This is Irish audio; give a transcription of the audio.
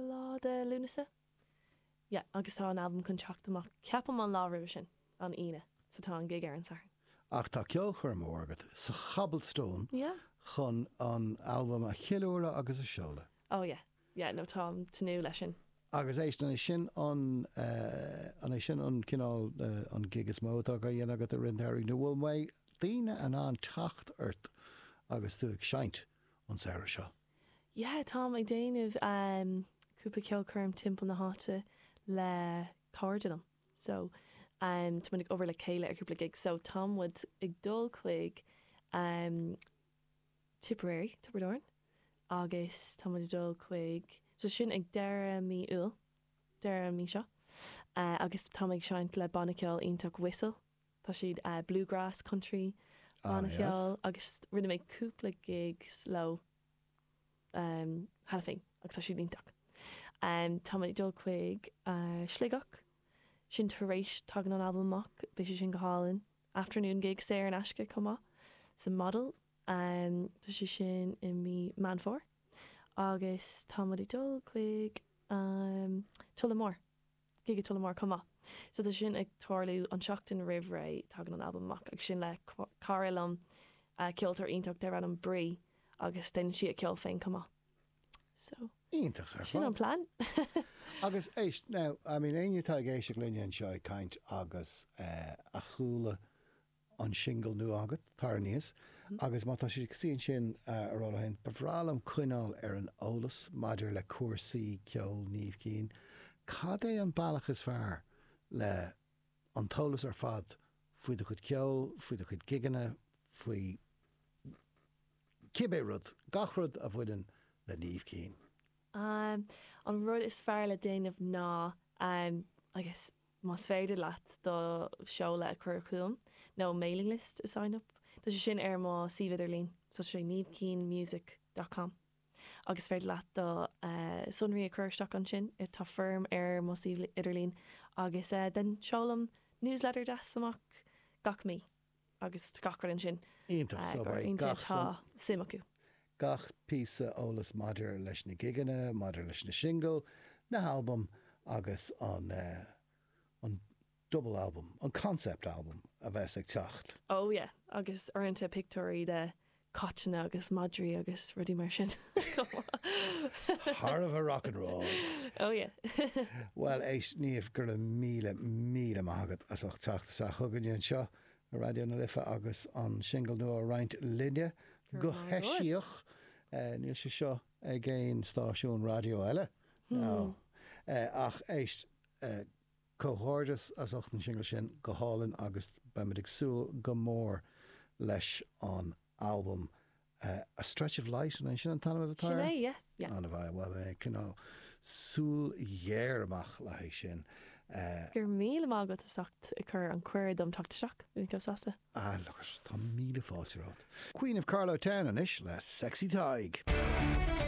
lá de Lúnasa. Yeah, agus tá an t-albam chun teacht amach ceapaim an lá roimhe sin, an Aoine, so tá an gig ar an Satharn. Ach tá ceolchoirm mhór agat sa Cobblestone Yeah. chun an albam a cheiliúradh agus a seoladh. Oh yeah, yeah, no táim tnúth leis sin. Agus éist, an é sin an, an é sin an cineál, an gig is mó atá á dhéanamh agat i rith an tsamhraidh nó an bhfuil daoine in ann teacht ort agus tú ag seinnt an samhradh seo? yeah tá mé ag déanamh cúpla ceolchoirm timpeall na háite le cairde liom so tá muid ag obair le chéile ar cúpla gig so tá muid ag dul chuig Tipperary, Tiobraid Árann agus tá muid ag dul chuig so sin ag deireadh mí Iúil, deireadh an mhí seo agus táim ag seinnt le banna ceoil iontach Whistle. tá siad bluegrass, country banna ceoil agus rinne mé cúpla gigs leo cheana féin agus tá siad iontach. Tá muid ag dul chuig Sligeach, sin tar éis, tagann an albam amach, beidh sé sin go hálainn. Afternoon gig saor in aisce chomh maith sa Model, tá sé sin i mí Meán Fómhair agus táimid ag dul chuig Tullamore gig i dTullamore chomh maith. So tá sin ag tarlú an tseachtain roimh ré, tagann an albam amach agus sin le cara liom, ceoltóir iontach darb ainm Bree agus déanann sí a ceol féin chomh maith. So. Iontach ar fad. Sin an plean. Agus éist, now, I mean, éinne atá ag éisteacht linne anseo ag caint agus a chuala an singil nua agat, tar aníos agus má tá siad ag suí ansin ag rá leo féin, ba bhreá liom coinneáil ar an eolas maidir le cúrsaí ceoil Niamh Keane, cad é an bealach is fearr le an t-eolas ar fad faoi do chuid ceoil, faoi do chuid gigeanna, faoi cibé rud, gach rud a bhaineann le Niamh Keane? An rud is fearr le déanamh ná, I guess, más féidir leat do sheoladh a chur chugam nó mailing list a sign up tá sé sin ar mo suíomh idirlín so is é niamhkeanemusic dot com agus is féidir leat do sonraí a chur isteach ansin tá foirm ar mo suíomh idirlín agus then seolaim newsletter deas amach gach mí. agus gach rud ansin. Iontach. So beidh gach má tá suim acu. gach píosa eolas maidir leis na gigeanna, maidir leis na singil, na halbaim agus an an double album, an concept album a bheas ag teacht. Oh yeah, agus uaireanta pictiúirí de cáiteanna agus madraí agus rudaí mar sin chomh maith. Thar a bheith rock and roll! Oh yeah! Bhuel, éist, Niamh, go raibh míle, míle maith agat as ucht teacht isteach chugainne anseo i Raidió na Life agus an singil nua a roinnt linne go heisiach. Níl sé seo ag aon stáisiún raidió eile, ná. Ach éist, Comhghairdeas as ucht an singil sin, go hálainn agus beimid ag súil go mór leis an albam. A Stretch of Light, an é sin an t-ainm a bheidh air? Sin é, yeah, yeah. Bhuel, beidh mé ag coinneáil súil ghéar amach le haghaidh sin. Go raibh míle maith agat as ucht ag cur an cuireadh dom teacht isteach, bhí mé chomh sásta. Ah, look, tá míle fáilte romhat. Queen of Carlowtown anois le Sexy Tadhg.